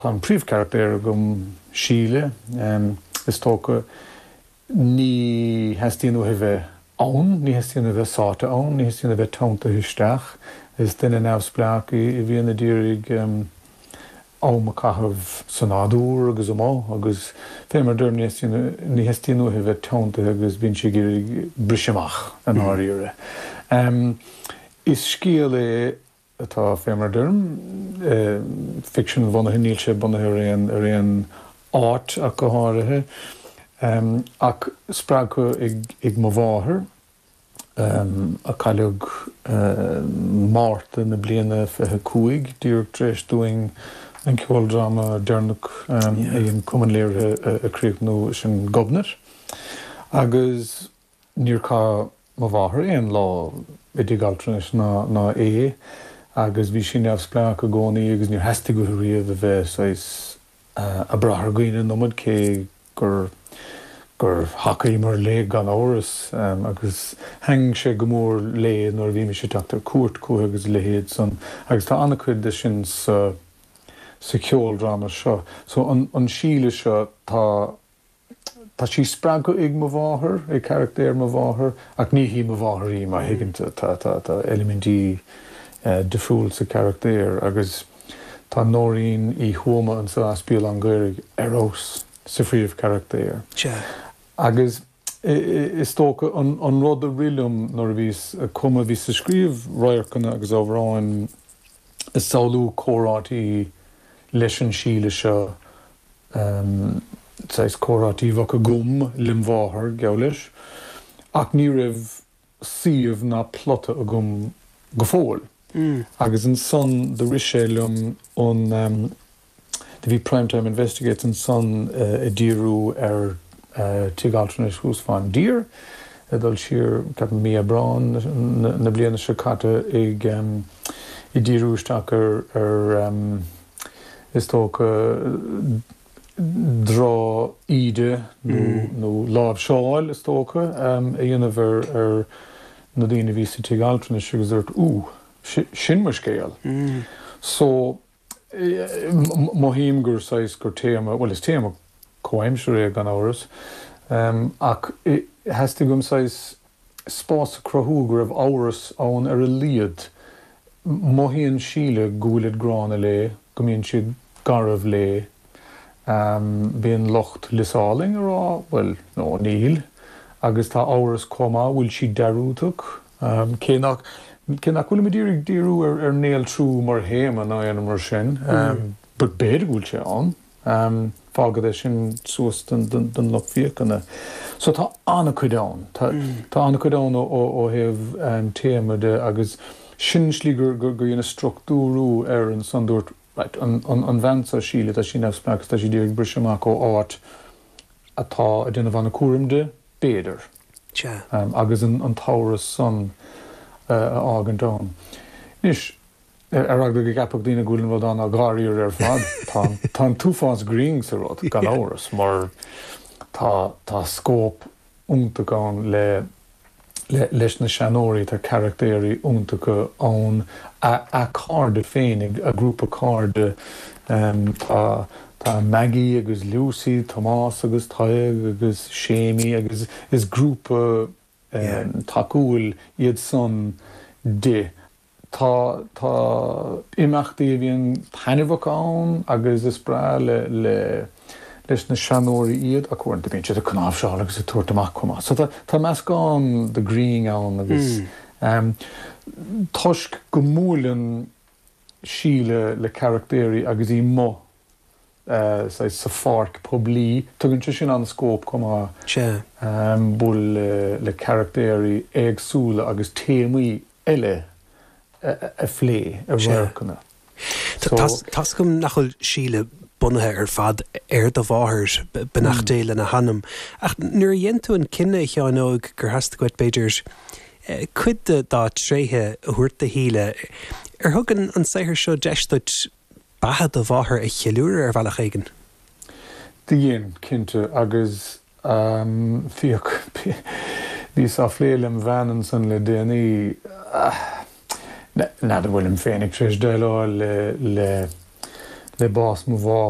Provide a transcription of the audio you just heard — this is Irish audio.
Tá an príomhcharachtar agam, Síle. Is dócha ní theastaíonn uaithi bheith ann, ní theastaíonn a bheith sáite ann, ní theastaíonn a bheith teanntaithe isteach. Is duine neamhspleách í a bhíonn ag iarraidh am a caitheamh sa nádúr agus amuigh agus, fé mar a deirim, ní theastaíonn, ní theastaíonn uaithi bheith teanntaithe agus bíonn sí ag iarraidh briseadh amach i ndáiríre. Is scéal é atá fé mar a deirim, ficsean, bunaithe, níl sé bunaithe ar aon ar aon áit ach go háirithe, ach spreagtha ag ag mo mháthair, a cailleadh Márta na bliana fiche cúig, díreach tar éis dúinn an ceoldráma deireanach a dhein Cumann Léirithe a críochnú, sin Gobnait. Agus. Níor chaith mo mháthair aon lá i dtigh altranais ná é agus bhí sí neamhspleách i gcónaí agus níor theastaigh uaithi riamh a bheith saghas a' brath ar dhaoine an iomad cé gur, gur thacaíomar léi gan amhras agus thaitn sé go mór léi nuair a bhímis ag teacht ar cuairt chuici agus a leithéid san agus tá ana-chuid de sin sa, sa cheoldráma seo. So an, an Síle seo, tá. Tá sí spreagtha ag mo mháthair, ag carachtar mo mháthar, ach ní hí mo mháthair í, má thuigeann tú. Tá eilimintí difriúil sa charachtar agus tá Nóirín Uí Thuama anseo as Béal Átha an Ghaorthaidh ar fheabhas sa phríomhcharachtar. Agus is dócha an rud a rith liom nuair a bhíos ag cumadh, bhíos ag scríobh radharcanna agus amhráin, is shamhlaíos comhráití leis an Síle seo, saghas comhráití a bheadh agam lem mháthair, geall leis, ach ní raibh suíomh ná plota agam go fóill. Agus ansan do rith sé liom an. Do bhí Prime Time Investigates ansan ag díriú ar tigh altranais thuas fán dtír, ag dul siar, ceapaim, mí Aibreán na bliana seo caite, ag díriú isteach ar, is dócha, droch-íde nó láimhseáil, is dócha, a dhéanamh ar na daoine a bhí sa tigh altranais agus dúrt, Ooh, sin mo scéal. So. Mothaím gur saghas, gur téama, bhuel is téama comhaimsire é gan amhras, ach theastaigh uaim saghas spás a cruthú go raibh amhras ann ar a laghad. Mothaíonn Síle go bhfuilid gránna léi, go mbíonn siad garbh léi. Bíonn lucht Lios Álainn ag rá, bhuel, no, níl. Agus tá amhras chomh maith, bhfuil sí dearúdach? Cé nach bhfuilimid díreach ag díriú ar néaltrú mar théama ná aon rud mar sin, b'fhéidir go bhfuil sé ann, fágfad é sin suas don lucht féachana. So tá an-chuid ann. Tá an-chuid ann ó thaobh téama de agus sin slí gur dhéanadh structúrú air ansan dúirt right, an bhean seo, Síle, tá sí neamhspleách agus tá sí díreach ag briseadh amach ó áit atá ag déanamh an-chúram di, b'fhéidir. Sea. Agus an t-amhras san a fhágaint ann. Anois, ar eagla go gceapfadh daoine go bhfuil an rud an-dáiríre ar fad, á, tá an t-uafás grinn sa rud, gan amhras, mar tá scóip iontach ann leis na seanóirí, tá carachtaeirí iontacha ann, a cairde féinig, a grúpa cairde, tá. Tá Maggie agus Lucy, Tomás agus Tadhg agus Séimí agus is grúpa tacúil iad san di. Tá tá imeachtaí a bhíonn taitneamhach ann agus is breá le le leis na seanóirí iad, ach uaireanta. Bíonn siad ag cnáimhseáil agus ag tabhairt amach chomh maith. So tá tá meascán de ghreann ann agus toisc go mbuaileann Síle le carachtéirí agus í amuigh, saghas, sa pháirc poiblí. Tugann sé sin an-scóip chomh maith bualadh le carachtéirí éagsúla agus téamaí eile a phlé, i radharcanna. Tá a fhios agam nach bhfuil Síle bunaithe ar fad ar do mháthair, beannacht Dé lena hanam, ach nuair a dhein tú an cinneadh, a Sheáin Óg, gur theastaigh uait, b'fhéidir, cuid de dá tréithe a thabhairt do Shíle. Ar thug an saothar seo deis duit beatha do mháthar a cheiliúradh ar bhealach éigin? Do dhein, cinnte, agus féach, bhíos á phlé lem' bhean ansan le déanaí, n'fheadar bhfuilim féinig tar éis déileáil le bás mo mháthar,